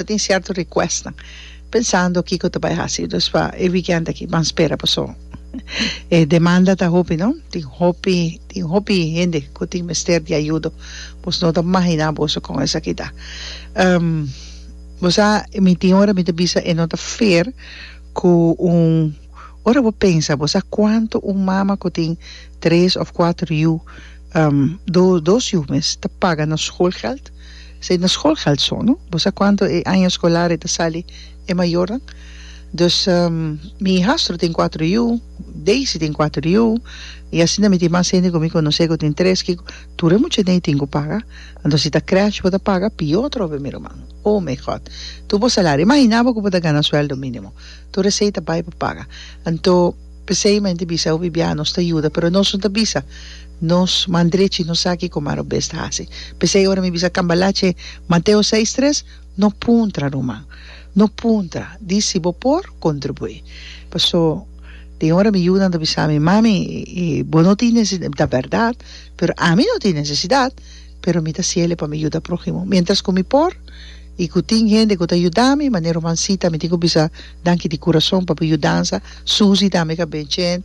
Ta tin cierto requestnan pensando kico ta bay haci dus pa e weekend aki ban spera paso e demanda ta hopi no tin hopi tin hopi hende cu tin mester di ayudo boso no ta mahina boso con esaki ta bo sa mi tin ora mi ta bisa e no ta fair cu un ora bo pensa bo sa cuanto un mama cu tin tres of cuatro yu dos yu mes ta paga na school geld. Esei na skolkalson no. Bo sa kuantu e año skolar e ta sali e mayornan? Dus mi hihastru tin kuatru yu, Daisy tin kuatru yu, i asinta mi tin mas hende ku mi konosé ku tin tres kiko. Tur e mucha den ei tin ku paga. Anto si ta krèsh bo ta paga pió trobe mi ruman. Oh my God! Tur bo salario. Imaginá bo ku bo ta gana suèldo mínimo. Tur esei ta bai pa paga. Anto. P'esei mi a hende bisa, Hopi biaha nos ta yuda, pero nos no ta bisa nos man drechi, no sa kiko mas Robes ta hasi. P'esei ora mi bisa cambalache Mateo seis tres, no puntra ruman, no puntra, di si bo por contribui. Paso den ora mi yunan ta bisa mi, Mami, bo no tin necesidad, ta berdad, pero ami no tin necesidad, pero mi ta siele pa mi yuda prohimo mientras cu mi por. i ku tin hende ku ta yuda mi manera Rumansita mi tin ku bisa danki di kurason pa bo yudansa Susi tambe ka ben chent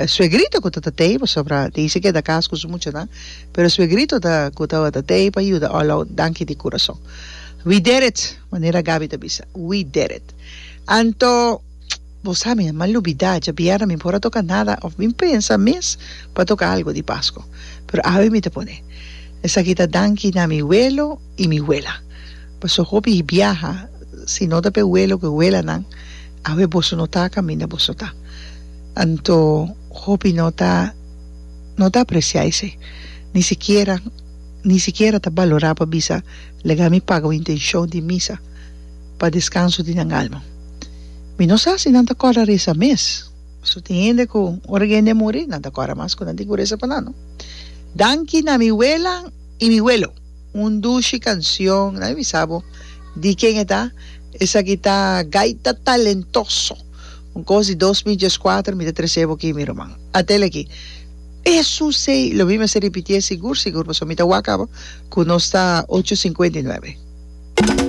suegrito ku ta ta tei pasobra tin esei ke ta kas ku su muchanan pero suegrito ta ku tabata tei pa yuda alou danki di kurason we did it manera Gaby ta bisa we did it anto bo sa mi mal lubida dja bièrnè mi por a toka nada òf mi pensa mes pa toka algu di Pasko pero awe mi ta pone esaki ta danki na mi welo. y mi wela. Paso hopi hi biaha si no ta pe welo cu wela nan awe boso no ta caminda boso ta. Anto hopi no ta no ta aprecia esey ni sikiera ni sikiera ta balora pa bisa lega mi paga un intencion di misa pa descanso di nan alma. Mi no sa si nan ta corda reza mes paso tin hende cu ora cu hende a muri nan ta corda mas cu nan tin cu reza pa nan no. Danki na mi wela y mi welo. Un dushi cancion. Nan a bisa bo di ken e ta? Esaki ta gaita talentoso. Un cos di dos mil diescuater mi ta trece bo aki mi ruman. Atel aki. Eso sei. Lo mi mester ripitié sigur sigur pasobra mi ta wak abo cu nos ta ocho cincuenta y nuebe.